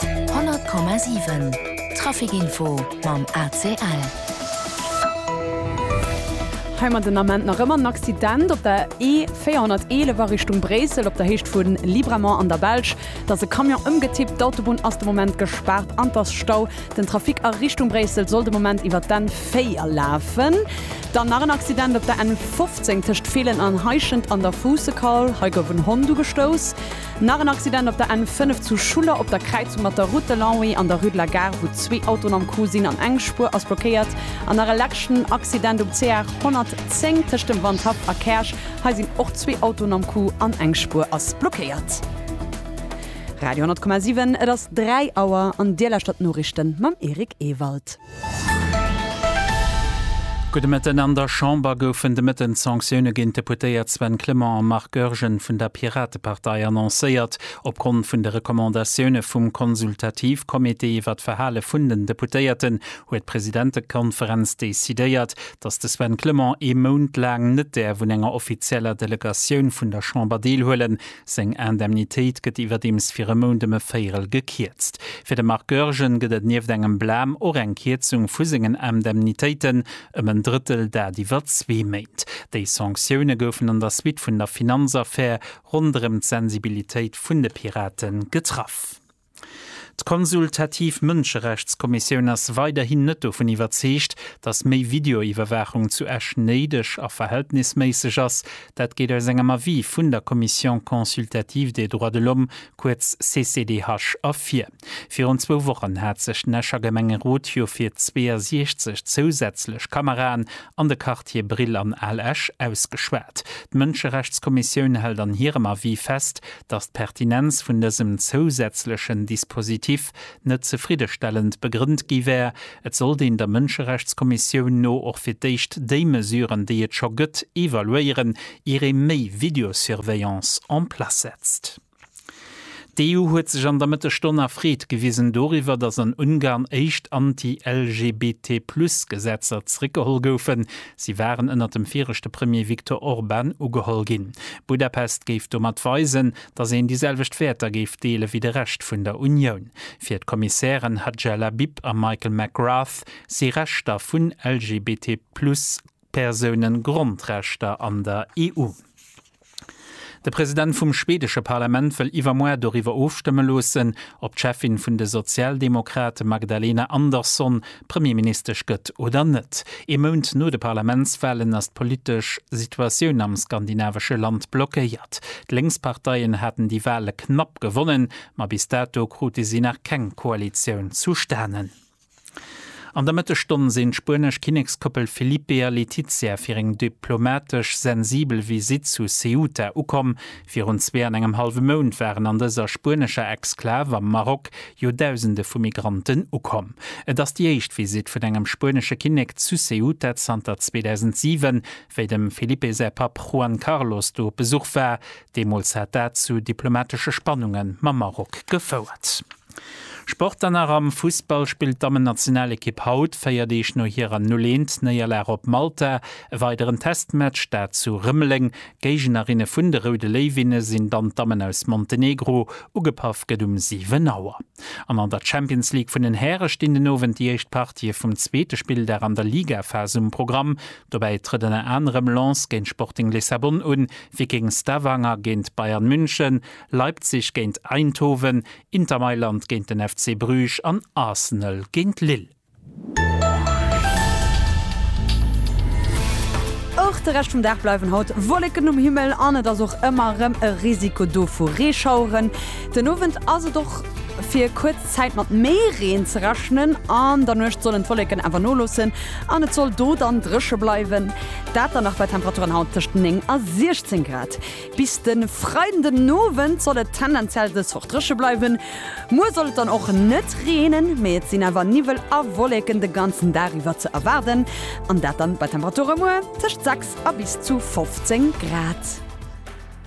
100,7 Trafic Info mam ACL. Heimat den Ament nach ëmmer en Accident op der E411 a Richtung Bréissel op der Héicht vu Libramont an der Belsch. Et ass e Camion ëmgetippt. D'Autobunn ass de Moment gespaart an et ass Stau. Den Trafic a Richtung Bréissel soll de Moment iwwer d'N4 lafen. Dann nach en Accident op der N15 tëscht Feelen an Heischent an der Fuussekaul. Hei gouf en Hond ugestouss. Nach en Accident op der N5 zu Schuller op der Kräizung mat der Route de Longwy an der Rue de la Gare, wou zwee Autoen am Coup sinn an eng Spuer ass blockéiert. An nach e leschten Accident um CR 110 tëscht dem Wandhaff a Käerch. Hei sinn och zwee Autoen am Coup an eng Spuer ass blockéiert. Radio 10,7, et ass 3 Auer an Dir lauschtert d'Noriichten mam Eric Ewald. Gudde Mëtten. An der Chamber goufen de Mëtten d'Sanktioune géint d'Deputéiert Sven Clement a Marc Goergen vun der Piratepartei annoncéiert. Opgrond vun de Recommandatioune vum Konsultativcomité iwwer d'Verhale vun den Deputéierten huet d'Presidentekonferenz decidéiert, datt de Sven Clement ee Mount laang net däerf un enger offizieller Delegatioun vun der Chamber deelhuelen. Seng Indemnitéit gëtt iwwerdeems fir e Mount ëm e Véierel gekierzt. Fir de Marc Goergen gëtt et nieft engem Blam och eng Kierzung vu sengen Indemnitéiten ëm en Drëttel, dat iwwer zwee Méint. Déi Sanktioune goufen an der Suite vun der Finanzaffär ronderëm d'Sensibilitéit vun de Pirate getraff. D'Konsultativ Mënscherechtskommissioun ass weiderhin net dovun iwwerzeegt, datt méi Videoiwwerwaachung zu Esch néideg a verhältnisméisseg ass. Dat geet aus engem Avis vun der Commission consultative des droits de l'homme, kuerz CCDH, ervir. Virun zwou Wochen hat sech den Escher Gemengerot jo fir 62 zousätzlech Kameraen an de Quartiere Brill an Al Esch ausgeschwat. D'Mënscherechtskommissioun hält an hirem Avis fest, datt d'Pertinenz vun dësem zousätzlechen Dispositif net zefriddestellend begrënnt gi wär. Et sollt een der Mënscherechtskommissioun no och fir d'éischt déi Mesuren, déi et scho gëtt, evaluéieren, ier ee méi Videosurveillance en place setzt. D'EU huet sech an der Mëttegstonn erfreet gewisen doriwwer, datt an Ungarn éischt Anti-LGBT-Plus-Gesetzer zeréckgeholl goufen, Si waren ënnert dem viregte Premier Viktor Orban ugeholl ginn. Budapest géif domat weisen, datt een déi selwecht Wäerter géif deele wéi de Rescht vun der Unioun. Fir d'Kommissären Hadja Labib a Michael McGrath si Rechter vun LGBT-Plus-Persoune Grondrechter an der EU. De President vum schweedesche Parlament wëll iwwermuer doriwwer ofstëmme loossen, ob d'Cheffin vun de Sozialdemokrate Magdalena Andersson Premierministesch gëtt oder net. Ee Mount no de Parlamentswalen ass d'politesch Situatioun am skandinavesche Land blockéiert. D'Lénksparteien haten déi Wale knapp gewonnen, ma bis dato krute si nach keng Koalitioun zustanen. An der Mëttesstonn sinn d'spuenesch Kinnekskoppel Felipe a Letizia fir eng diplomatesch sensibel Visitt zu Ceuta ukomm. Virun zwee an engem hallwe Mount waren an dëser spuenescher Exklav am Maroc jo Dausende vu Migranten ukomm. Et ass déi éischt Visitt vun engem spuenesche Kinnek zu Ceuta zanter 2007, wéi dem Felipe säi Papp Juan Carlos do op Besuch war. Deemools hat dat zu diplomatesche Spannunge mam Maroc gefouert. Sport dann nach, Am Fussball spillt d'Dammennationalekipp haut, 4 Deeg no hirer 0, 1 Néierlag op Malta, e weideren Testmatch, dat zu Rëmeleng. Géignerinne vun de Roude Léiwinne sinn dann d'Dammen aus Montenegro. Ugepaff gëtt um 7 Auer. An an der Champions League vun den Häre stinn den Owend déi éischt Partië vum zweete Spilldag an der Ligaphas um Programm. Dobäi trëtt ënner anerem Lens géint Sporting Lissabon un, Viking Stavanger géint Bayern München, Leipzig géint Eindhoven, Inter Mailand géint den FC Bruges an Arsenal géint Lille. Och de Rescht vum Dag bleiwen haut Wolleken um Himmel an et ass och ëmmer erëm e Risiko do vu Reeschaueren. Den Owend ass et och fir kuerz Zäit mat méi Reen ze rechnen. An der Nuecht sollen d'Wolleken awer nolossen an et soll do dann dréche bleiwen. Dat dann nach bei Temperaturen haut tëscht 9 a 16 Grad. Bis de Freiden den Owend soll et tendenziell dës Woch dréche bleiwen. Muer soll et dann och net reenen, mee et sinn awer Niwwel a Wolleken de ganzen Dag iwwer ze erwaarden, an dat dann bei Temperature muer tëscht 6 a bis zu 15 Grad.